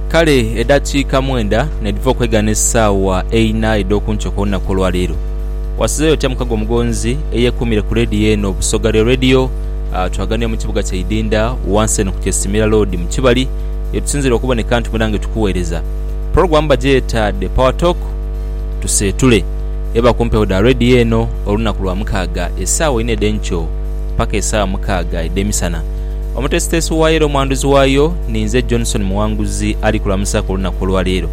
Kale edhakiika mwenda n'edhiva okwegana esaawa eina edh'oku nkyo kw'olunaku olwa leero. Wasizeeyo otya mukago omugonzi eyeekuumire ku leediyo eno Busoga Real Radio? Twaganira mu kibuga kya Idinda wansi eno ku Kyesimira Loodi mu Kibali ye tusinziira okuboneka nti mwena nga tukuweereza. Pulogulaamu bagyeta The Power Talk Tuseetule. Eba ku mpewo dha leediyo eno olunaku lwa mukaaga esaawa ina edh'enkyo paka esaawa mukaaga edh'emisana. Omuteesiteesi waayo era omwanduzi waayo ninze Johnson Muwanguzi ali kulamusa ku lunaku olwa leero.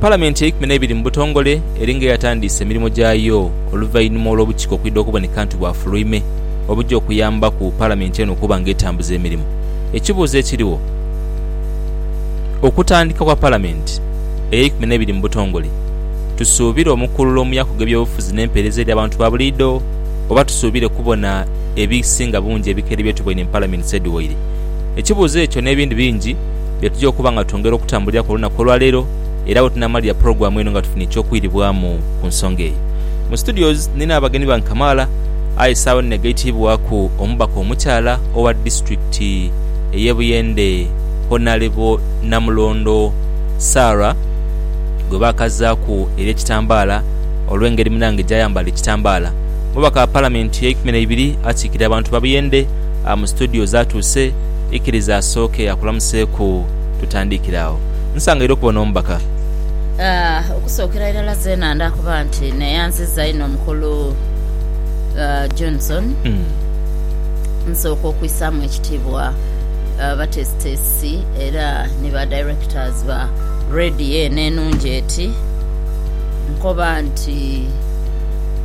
Palamenti eikumi n'ebiri mu butongole eri nga eyatandiise emirimu gyayo oluvainhuma olw'obukiiko okwidha okuboneka nti bwafuluime obuja okuyambaku palamenti eno okuba nga etambuza emirimu. Ekibuuzo ekiriwo, okutandika kwa palamenti eyeikumi n'ebiri mu butongole tusuubire omukululo mu yakuga eby'obufuzi n'empeereza eri abantu ba buliidho oba tusuubire kubona ebisinga bungi ebikere bye tuboine mu Palaminsi edhiwaire. Ekibuuzo ekyo n'ebindi bingi bye tuja okuba nga twongera okutambuliraku olunaku olwaleero era we tunaamalira pulogulaamu eno nga tufunye eky'okwiribwamu ku nsonga eyo. Mu studios nina abagenyi bange kamaala aye saagho eno negaitibwaku omubaka omukyala owa disiturikiti ey'e Buyende Honalebo Namulondo Sarah gwe baakazaaku ery'ekitambaala olw'engeri munange gy'ayambala ekitambaala. Omubaka wa Palamenti eyeikumi neibiri akiikirira abantu babuyende mu situdiyo zatuuse. Ikiriza asooke akulamuseeku tutandiikire agho. Nsangaire okuba n'omubaka. Okusookera irala zeena nda kuba nti neeyanziza inho Mukulu Johnson. Nsooka okwisaamu ekitiibwa bateesiteesi era ni ba Directors ba Radio eno enungi eti. Nkoba nti.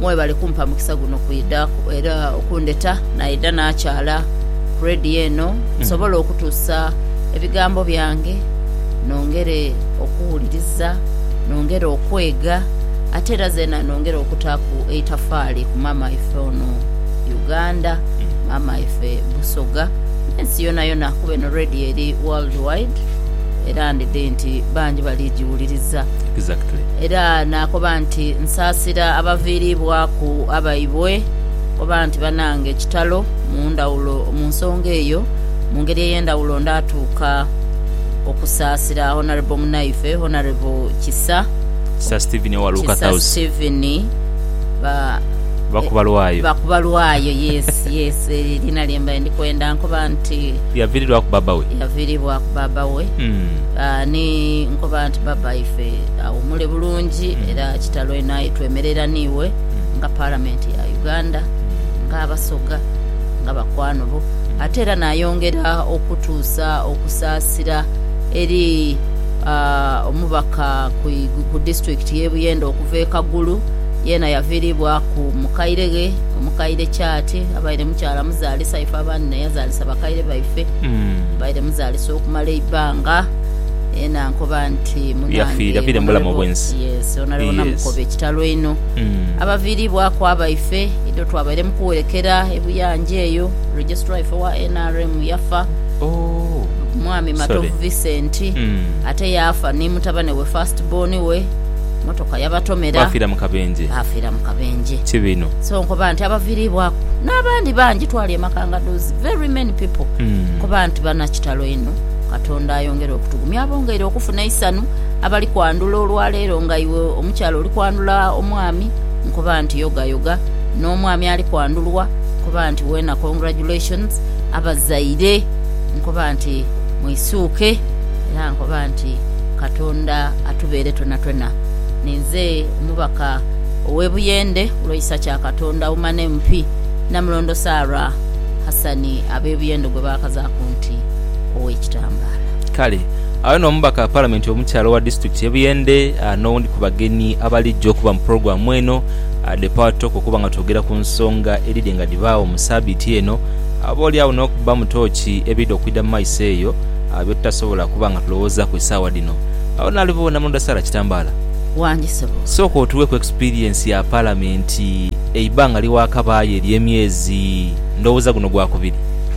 Mwebale kumpa mukisa guno kwidha era okundheta naidha nakyala ku radio eno nsobole okutuusa ebigambo byange nongere okuwuliriza, nongere okwega ate era zeena nongere okutaaku eitafaali ku maama waife ono Uganda, maama waife Busoga n'ensi yonayona kuba eno radio eri world wide era ndidhi nti bangi bali giwuliriza. Era naakoba nti, Nsaasira abaviiriibwaku abaibwe, oba nti, Banange kitalo mu ndhawulo mu nsonga eyo. Mu ngeri ey'endhawulo ndaatuuka okusaasira Honourable munaife, Honourable Kisa, Kisa Stephen Bakubalwayo, yes, yes, eryo liina lye mbaire ndi kwenda. Nkoba nti, Yaviiriibwaku baaba we. Ni nkoba nti. Baba ife awumule bulungi era kitalo inho aye twemerera niiwe nga Palamenti ya Uganda, nga Abasoga, nga bakwano bo ate era nayongera okutuusa okusaasira eri omubaka ku disitulikiti y'e Buyende okuva e Kagulu yeena yaviiribwaku mukaire ghe, omukaire Kyati abaire mukyala muzaalisa ife abandi n'eyazaalisa bakaire baife abaire muzaalisa okumala eibbanga. yena ankoba nti munange honorable yes honorable namukoba ekitalo einho mm. abaviribwaku abaife ido twabaire mukuwerekera ebuyanja eyo registrar ife wa nrm yafa oh. mwami matovu Sorry. vincent mm. ate yafa ni mutabane we first born we motoka yabatomera bafira mukabenje bafira mukabenje kibino so nkoba nti abaviribwaku n'abandi bangi twali emakanga dozi very many people mm. nkoba nti banakitalo ino Katonda ayongere okutugumya abongeire okufuna eisanhu abali kwandhula olwa leero nga iwe omukyala oli kwandhula omwami nkoba nti yoga yoga n'omwami ali kwandhulwa nkoba nti weena congratulations abazaire nkoba nti mwisuuke era nkoba nti Katonda atubeere twonatwona ninze omubaka owe Buyende kulwa Isakya Katonda Woman MP Namulondo Sarah Hassan abe Buyende gwebakazaaku nti. ow'ekitambaala. Kale agho n'omubaka wa Palamenti omukyala owa disitulikiti y'e Buyende n'owundi ku bagenyi abalijja okuba mu pulogulaamu eno The Power Talk okuba nga twogera ku nsonga edhidhye nga dhibaagho mu sabiiti eno oboolyawo n'okubbamu tooki ebidha okwidha mu maiso eyo byetutasobola kuba nga tulowoozaaku esaawa dhino. Agho n'aligho Namulondo Sarah Kitambaala. Wangi ssebo. Sooka otuweeku experience ya Palamenti eibanga lye waakabaayo ery'emyezi, ndowooza guno gwakubiri?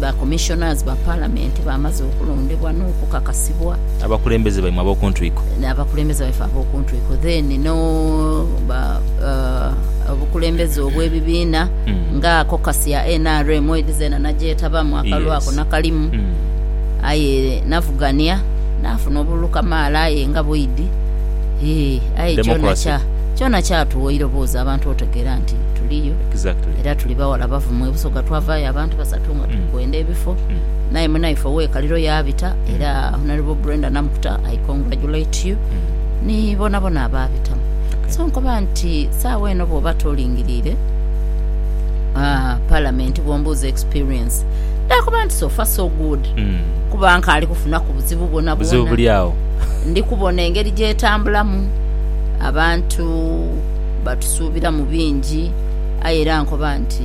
Ba Commissioners ba Palamenti bamaze okulondebwa n'okukakasibwa. Abakulembeze baimwe ab'oku ntwiko. Abakulembeze baife ab'oku ntwiko then no ba obukulembeze obw'ebibiina nga caucus ya nrm edi zeena nagyetabamu akalulu ako nakalimu aye navugania nafuna obululu kamaala aye nga bwidi hii aye kyona kyatuwa eiroboozi abantu otegeera nti tuliyo era tuli bawala bavumu e Busoga twavaayo abantu basatu nga tuli kwenda ebifo naye munaife owekaliro yabita era honorable brenda namukuta i congratulate you ni bonabona ababitamu so nkoba nti saawa eno bwoba tolingirire ah, palamenti bwombuuza experience nakoba nti sofa so good Mm. kuba nkaali kufunaku buzibu buzibu bwonabwona buli awo ndi kubona engeri gyetambulamu abantu batusuubira mu bingi aye era nkoba nti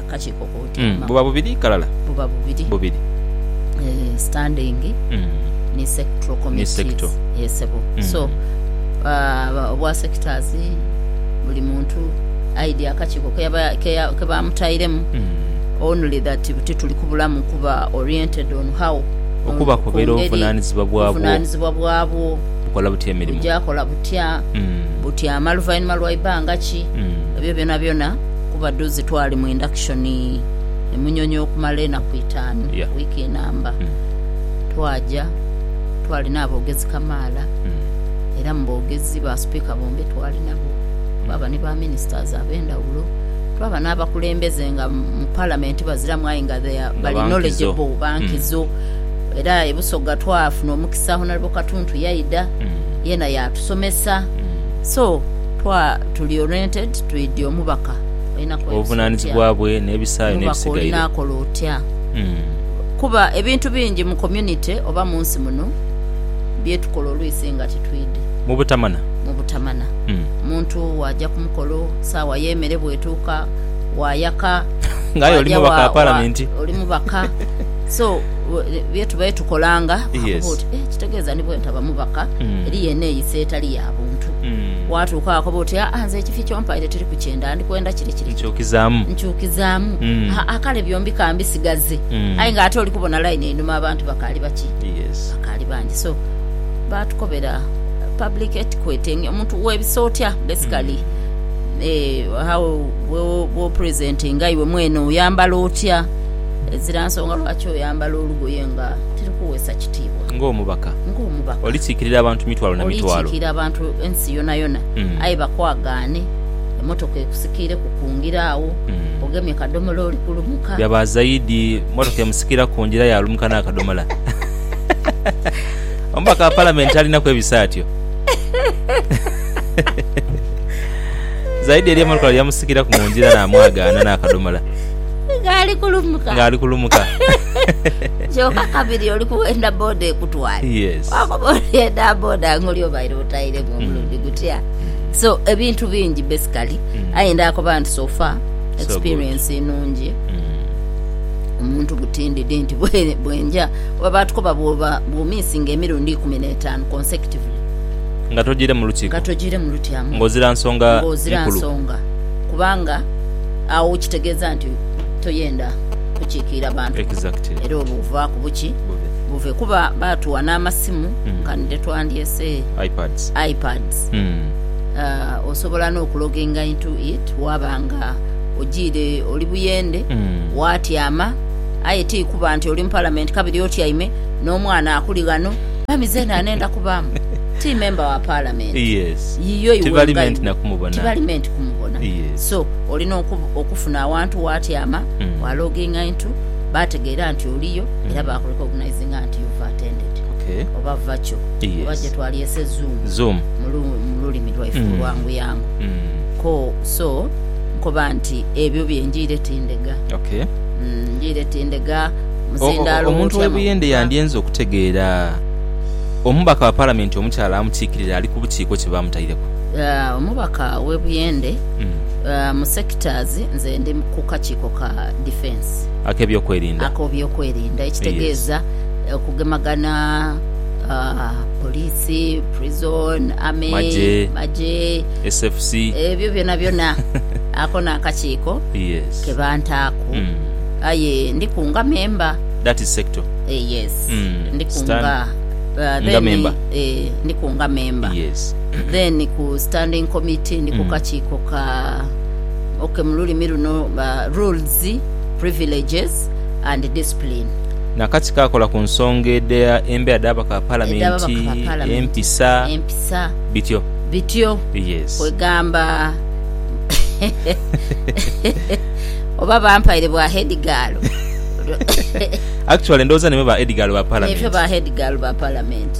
kakiiko k'otyama. Buba bubiri ghalala? Buba bubiri. Bubiri. Eeh, standing ni sectoral committees. Eeh sebo. So, obwa sectors, buli muntu aidhi akakiiko kebamutairemu, only that buti tuli kubulamu kuba oriented on how, okubakobera obuvunanizibwa bwabwo, obuvunanizibwa bwabwo, bukola butya emirimu, bugya kola butya, butyama luvainhuma lwa ibanga ki, ebyo byonabyona. Kuba dhuuzi twali mu induction emunyonyi okumala enaku itaanu, week enamba, twaja twalina abogezi kamaala era mu bogezi ba speaker bombi twali nabo, twaba ni ba ministers abendhawulo, twaba n'abakulembeze nga mu parliament baziramu aye nga they are bali knowledgeable, ba nkizo. Era e Busoga twafuna omukisa Honourable Katuntu yaidha yena yatusomesa so twa. Tuli oriented twidi omubaka olina kweyosa otya? Obuvunanizibwa bwe nebisaayo nebisigaire. Omubaka olina kola otya? Kuba ebintu bingi mu community oba munsi muno byetukola olwisi nga titwidi. Mubutamana. Mubutamana. Omuntu waja kumukolo, saawa yemere bwetuuka, wayaka, waja wa wa oli mubaka so byetubaire tukolanga bakubuuza oti eh kitegeeza ni bwentaba mubaka eriyo eneyisa etali yabuntu. Waatuuka wakoba oti, Aa, nze ekifi ky'ompaire tiriku kye nda, ndikwenda kire kire kire. Nkyukizaamu. Nkyukizaamu. Aa, kale byombi ka mbisigaze. Aye ng'ate oli kubona line einhuma abantu bakaali baki? Bakaali bangi. So, baatukobera public etiquette, omuntu weebisa otya basically, eeh, how bw'opresentinga iwe mwene, oyambala otya, ezira nsonga lwaki oyambala olugoye nga tirukuweesa kiti. kutibwa. Ng'omubaka. Ng'omubaka. Olisikirira abantu mitwalo na mitwalo. Olisikirira abantu ensi yonayona. Aye bakwagaane, emotoka ekusikiireku kungira agho, ogemye kadomola oli kulumuka. Byaba zaidi, motoka emusikira kungira aye alumuka n'akadomola. Omubaka wa Palamenti talina kwebisa atyo. Zaidi eriyo emotoka yamusikiraku mungira namwagaana n'akadomola. Ng'ali kulumuka. Ng'ali kulumuka. Kyoka kabiri oli kughenda boda ekutwale wakoba oli eda boda nga oli obaire otairemu omulundi gutya so ebintu bingi basically aye ndakoba nti so far experience nungi omuntu guti ndidi nti bwenja kuba batukoba bwoba bwomisinga emirundi ikumi netanu consecutively nga tojiiremu lukiiko nga tojiiremu lutyamu ng'ozira nsonga ng'ozira nkulu. nsonga kubanga agho kitegeeza nti toyenda tokiikiira bantu exactly era obwo buvaaku buki bube buve kuba baatuwa n'amasimu Mm. nkanidde twandyese ipads ipads Mm. uh, osobola n'okuloginga into it waaba nga ogiire oli buyende Mm. waatyama aye tiikuba nti oli mu palamenti kabiri otyaime n'omwana akuli ghano mami zeena anenda kubaamu ti memba wa palamenti yes yiyo iwe Tibali nga meant iwe. nakumubona. tibali meant kumubona Yes. so olina oku- okufuna awantu waatyama wa loginga intu bategeera nti oliyo era ba kurekogunaizinga nti you've attended oba virtual oba gyetwalyese zoom mu lulimi lwaife olwanguyangu ko so nkoba nti ebyo bye njiire tindega njiire tindega muzindaalo omuntu we Buyende yandyenze okutegeera omubaka wa palamenti omukyala amukiikirira ali ku bukiiko kye bamutaireku omubaka we Buyende. mu sectors nze ndi ku kakiiko ka defence akobyokwerinda ekitegeeza okugemagana police, prison, army, magye ebyo byonabyona ako nakakiiko kebantaaku aye ndiku nga member yes ndiku nga member. Then ku standing committee ndi ku kakiiko ka ok mu lulimi luno rules, privileges and discipline. Nakati kakola ku nsonga edha embeera dha ababaka ba palamenti, empisa, bityo bityo kwegamba oba bampaire bwa head girl actually ndowooza naimwe ba head girl ba palamenti.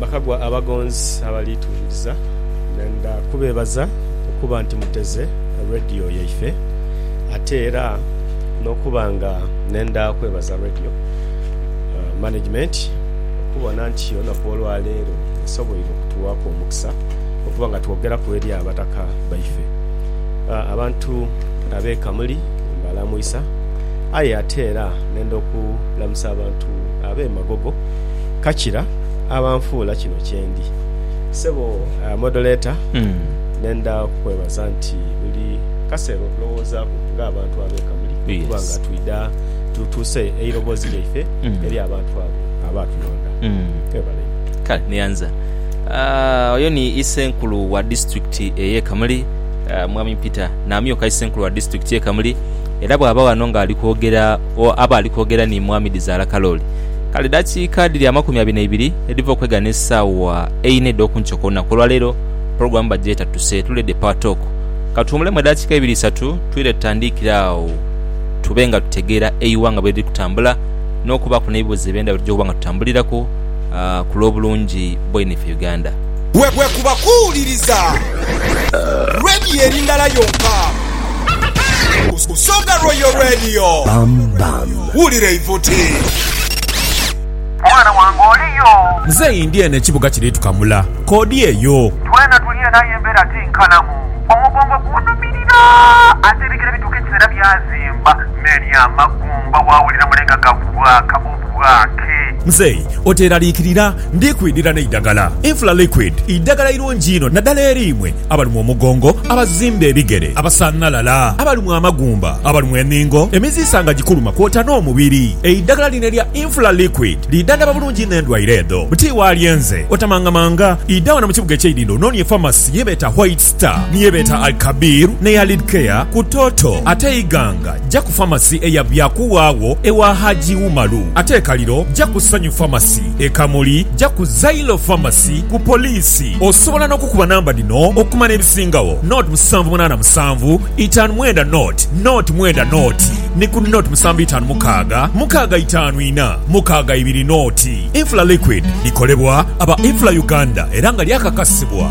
Bakagwa abagonzi abali tuwuliriza. Ndenda kubeebaza okuba nti muteze Radio yaife, ate era n'okuba nga ndenda kwebaza Radio Management okubona nti olunaku olwaleero esoboire okutuwaaku omukisa okuba nga twogeraku eri abataka baife. Abantu ab'e Kamuli mbalamwisa, aye ate era ndenda okulamusa abantu ab'e Magogo, Kakira, abanfuula kino kyendi. Sebo Modoleta, nenda kukwebaza nti buli kaseera otulowoozaku nga abantu abo e Kamuli okuba nga twidha tutuuse eirobozi lyaife eri abantu abo abaatunonda. Webale inho. Kale nianza oyo ni isenkulu wa disiturikiti eye Kamuli Mwami Peter Namyuka isenkulu wa disiturikiti ye Kamuli era bwaba wano nga alikwogera agho aba ali kwogera ni Mwami Dhizaala Kalooli. Kale dakiika dhiri amakumi abiri n'eibiri edhiva okwegha n'esaawa eina edh'oku nkyo ku lunaku olwaleero, pulogulaamu bagyeta Tuse Tule The Power Talk. Ka tuwumulemu edakiika ibiri isatu twire tutandiikire agho tube nga tutegeera eighanga bwe liri kutambula n'okubaaku n'ebibuuzo eby'endhawulo eby'okuba nga tutambuliraku ku lw'obulungi bwaino ife Uganda. Bwekuba kuwuliriza Radio eri ndala yonka, Busoga Royal Radio. Wulira eivuti. Mwana wange oliyo? Mzeei ndi eno ekibuga kiri tukamula. Kodi eyo. Twena tuli eno aye embera ti nkalamu. Omugongo gunumilira ate ebigere bituuka ekiseera byazimba. Meli amagumba wawulira mulenga gakubwaaka. bwake. Mzei, oteeraliikirira, ndi kwidhira n'eidagala. Infla Liquid, idagala irungi inho nadala eri imwe abalumwa omugongo, abazimba ebigere, abasanhalala, abalumwa amagumba, abalumwa enhingo, emiziisa nga gikuluma kwota n'omubiri. Eidagala lino erya Infla Liquid lidhandhaba bulungi inho endwaire edho. Buti wa lyenze, otamangamanga, idha wano mu kibuga eky'eidhindho onoonie famasi ye beeta Whites. Sita ni ye beeta Al Kabir n'eya Lid Care ku Toto ate Iganga ja ku Pharmacy eya Byakuwa agho ewa Hajji Umaru ate e Kaliro ja ku Sanyu Pharmacy. E Kamuli ja ku Zailo Pharmacy ku Poliisi. Osobola n'okukuba namba dhino okumanya ebisingagho, nought musanvu munaana musanvu itaanu mwenda nought nought mwenda nought ni ku nought musanvu itaanu mukaaga mukaaga itaanu ina mukaaga ibiri nought. Infla Liquid likolebwa aba Infla Uganda era nga lyakakasibwa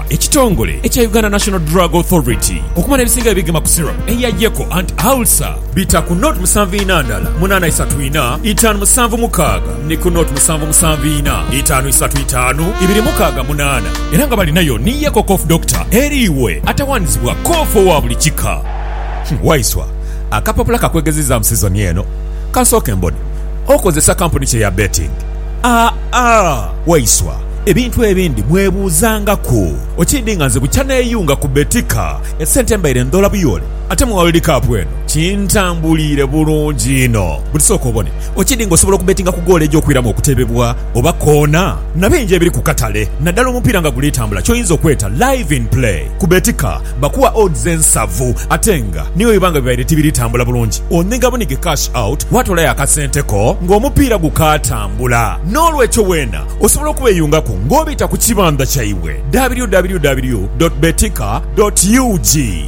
Ekitongole ekya Uganda National Drug Authority okumala ebisinga ebigema ku syrup eya Yeko anti ulcer bita ku not musanvu ina ndala munana isatu ina itanu musanvu mukaaga ni ku not musanvu musanvu ina itanu isatu itanu ibiri mukaaga munana era nga balinayo ni Yeko Cough Doctor eri iwe atawanizibwa cough owa buli kika. Waiswa, akapapula kakwegezizamu sizoni eno? Kansooke mbone. Okozesa kampuni ki eya betting? Aa Waiswa, ebintu ebindi mwebuuzangaku. Okiidhi nga nze bukya neeyunga ku Betika, esente mbaire ndhoola buyoole ate mu World Cup eno kintambuliire bulungi inho. Buti sooka obone, okiidhi nga osobola okubetinga ku goolo egy'okwiramu okutebebwa oba koona na bingi ebiri ku katale naddala omupiira nga guli tambula ky'oyinza okweta Live in Play ku Betika. Bakuwa odds ensavu ate nga ni bwe biba nga bibaire tibiri tambula bulungi, onhiga bunhige cash out waatoolayo akasente ko ng'omupiira gukaatambula. N'olwekyo weena osobola okubeeyungaku ng'obita ku kibandha kyaibwe, www dot betika dot ug,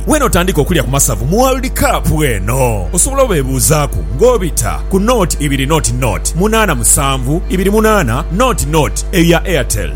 weena otandike okulya ku masavu mu World Cup eno. Osobola obeebuuzaaku ng'obita ku nought ibiri nought nought munaana musanvu ibiri munaana nought nought eyo ya Airtel.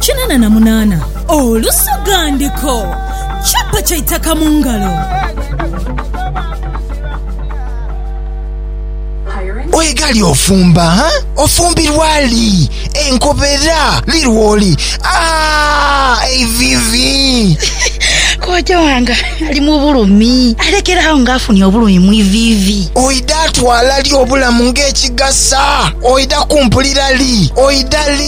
Kinana na munana olusogandiko. Chapa kya itaka mu ngalo. Oye gali ofumba ha? Ofumbirwa li? Enkobera li lwoli? Aah eivivi. Kojja wange ali mu bulumi. Alekera agho nga afunye obulumi mu iviivi. Oidha twala li obulamu ng'ekigasa? Oidha kumpulira li? Oidha li?